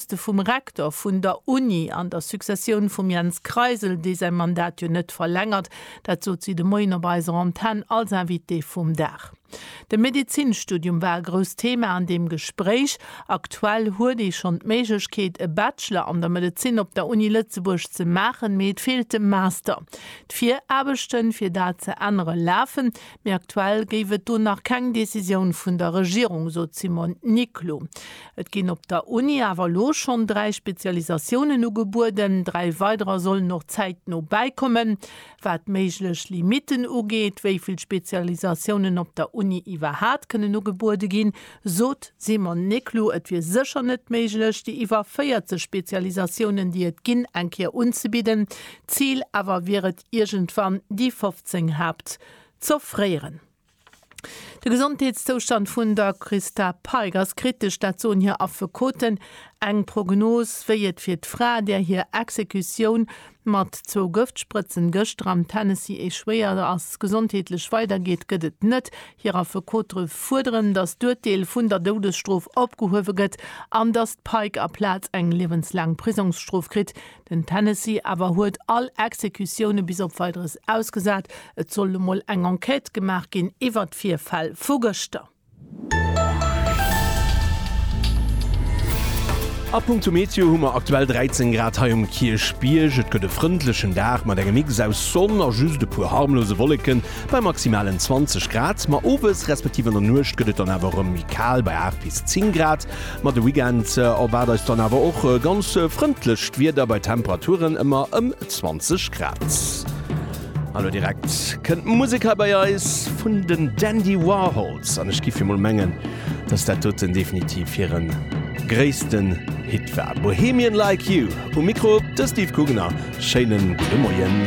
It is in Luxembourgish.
Poste vum Rektor vun der Uni an der Successioun vum Jens Kreisel, dee säi Mandat jo net verlängert, dat sot si de Moien op eiser Antenn als Invitée vum Dag. De Medezinstudium war e grousst Thema an deem Gespréich. Aktuell huet ee schonn d'Méiglechkeet, e Bachelor an der Medezin op der Uni Lëtzebuerg ze maachen, mee et feelt de Master. D'Viraarbechte fir dat ze ännere lafen, mee aktuell géif et do nach keng Decisioun vun der Regierung, sot d'Simone Niclou. Et ginn op der Uni awer elo schonn dräi Spezialisatiounen ugebueden, dräi weiderer sollen och zäitno bäikommen. Wat méiglech Limitten ugeet, wéi vill Spezialisatiounen op der Uni iwwerhaat kënnen ugebuede ginn, sot d'Simone Niclou, et wier sécher net méiglech, déi iwwer 40 Spezialisatiounen, déi et ginn, eng Kéier unzebidden. D'Zil awer wier et, iergendwann déi 15 Haapt z'offréieren. De Gesondheetszoustand vun der Christa Peick ass kritesch, dat soen hir Affekoten. Eng Prognos, wéi et fir d'Fra, där hir Exekutioun mat zwou Gëftsprëtzen gëschter am Tennessee echouéiert ass, gesondheetlech weidergeet, gëtt et net. Hir Affekote fuerderen, datt d'Urteel vun der Doudesstrof opgehuewe gëtt an datt d'Peick aplaz eng liewenslaang Prisongsstrof kritt. Den Tennessee awer huet all Exekutioune bis op Weideres ausgesat. Et soll elo mol eng Enquête gemaach ginn iwwert d'Virfäll vu gëschter. A punkto Meteo hu mer aktuell 13 Grad hei um Kierchbierg. Et gëtt e frëndlechen Dag mat engem Mix aus Sonn a just e puer harmlose Wolleken bei maximalen 20 Grad. Ma owes respektiv an der Nuecht gëtt et dann awer erëm méi kal bei 8 bis 10 Grad. Ma de Weekend erwaart eis dann awer och ganz frëndlecht Wieder bei Temperaturen ëmmer ëm 20 Grad. An elo direkt kënnt d'Musek hei bei eis vun den Dandy Warhols an ech géif emol mengen, dass dat doten definitiv hire gréissten Hit war. Bohemian Like You. Um Mikro de Steve Gugner. Schéinen gudde Moien.